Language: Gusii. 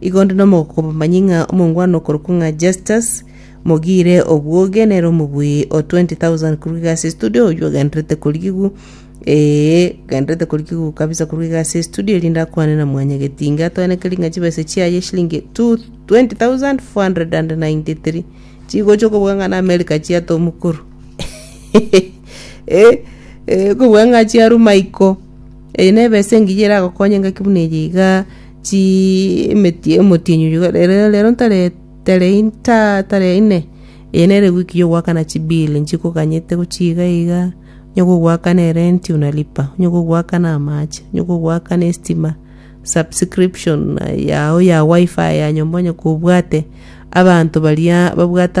Igondo nomogoko bamanyi ng'a omongwana okorokwa ng'a Justus mogiire obwoge nere omobui o 20,000 korwa egasi estudio oyio ogenderete korigigu ee ogenderete korigigu kabisa korwa egasi estudio erinde akwane na mwanya getinga atoenekeri ng'a chibesa chiaye shilingi 2493 chigocha okobuga ng'a na America chiata omokoro eh, eh, okobuga ng'a chiaruma iko eye nebesa engiya eragokonye ngaki buna eye iga Chiemetie omotienyi oyio rero rero ntare tare inta tare ine eye nere wiki yo goakana chibill nchikoganyete gochia iga iga onye gogoakana erenti unalipa onye gogoakana amache onye gogoakana estima subscription yao ya wifi ya nyomba onye kobwate abanto baria babwate.